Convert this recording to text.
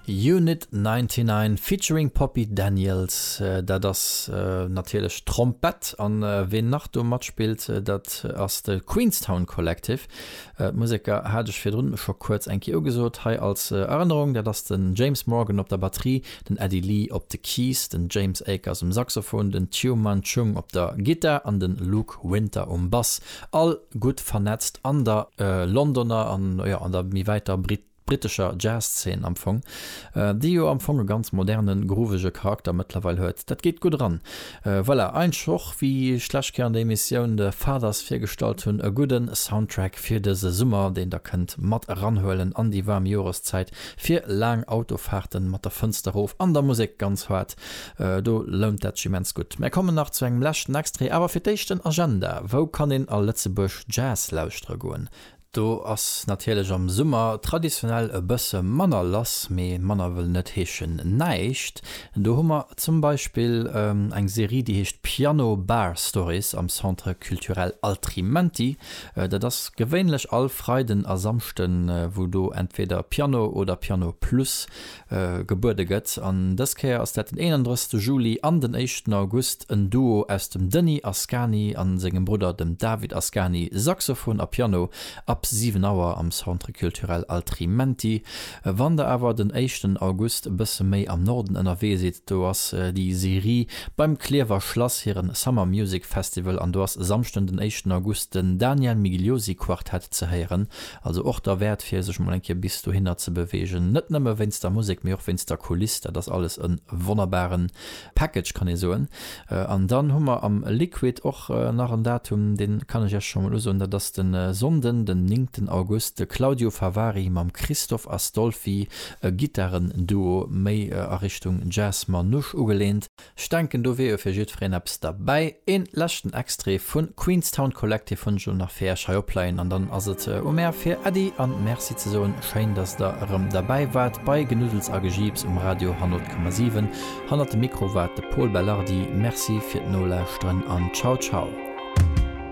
Unit 99 featuring Poppy Daniels, dat ass natierlech d'Trompett. An ween nach do matspillt, dat ass de Queenstown Collective. D'Museker hat ech virdrun scho kuerz eng Kéier ugesot, hei als Erënnerung, dat ass den James Morgan op der Batterie, den Eddie Lee op de Keys, den James Akers um Saxophon, den Tyu Man Chung op der Gittar an de Luke Winter um Bass. All gutt vernetzt an der Londoner an, jo, an der méi wäiter brittescher Jazz-Zeen am Fong, déi jo am Fong e ganz moderne, groovege Charakter mëttlerweil huet. Dat geet gutt eran. Voilà, eintsch och, wéi ech d'lescht Kéier an der Emissioun The Fathers virgestallt hunn, e gudde Soundtrack fir dëse Summer, deen der kënnt mat eranhuelen an déi waarm Joreszäit, fir laang Autofaarten mat der Fënster rof an der Musek ganz haart Do lount dat sech immens gutt. Mär kommen nach zu engem leschten Extrait, awer fir d'éischt en Agenda, Wou kann een a Lëtzebuerg Jazz lauschtere goen? Do ass natierlech am Summer traditionell e bësse manner lass, mee manner wëll net heeschen näischt. Do hu mer zum Beispill eng Serie, déi heescht Piano Bar Stories am Centre Culturel Altrimenti. Dat ass gewéinlech all Freiden a Samschden, wou do entweder Piano oder Piano Plus gebuede gëtt. An dës Kéier ass dat den 31 Juli an den éischten August en Duo aus dem Denis Ascani a sengem Brudder dem David Ascani, Saxophon a Piano, ab 7 Auer am Centre Culturel Altrimenti. Wann der awer den éischten August e bësse méi am Norden ënnerwee sidd, do ass déi Serie beim Clierfer Schlass hire Summer Music Festival an do ass Samschden den éischten August den Daniel Migliosi Quartet ze héieren Also och derwäert fir sech mol eng Kéier bis dohinner ze beweegen, net nëmme wéinst der Musek, mee och wéinst der Kuliss, dat ass alles e wonnerbaren Package kann ee soen. An dann hu mer am Liquid och nach en Datum, deen kann ech iech scho mol usoen, dat ass de Sonnden den néngten August, de Claudio Favari mam Christoph Astolfi, e Gittarenduo méi a Richtung Jazz Manouche ugelehnt. Ech denken do wier jo fir jiddfereen eppes derbäi. Een leschten Extrait vun Queenstown Collective hunn ech elo nach fir iech hei opleien an dann ass et u mär fir Äddi an Merci ze soen. Schéin dass der erëm derbäi waart bei Genuddels a Gejiips um Radio 100,7. Hannert dem Mikro war de Pol Belardi. Merci fir d'Nolauschteren an ciao ciao.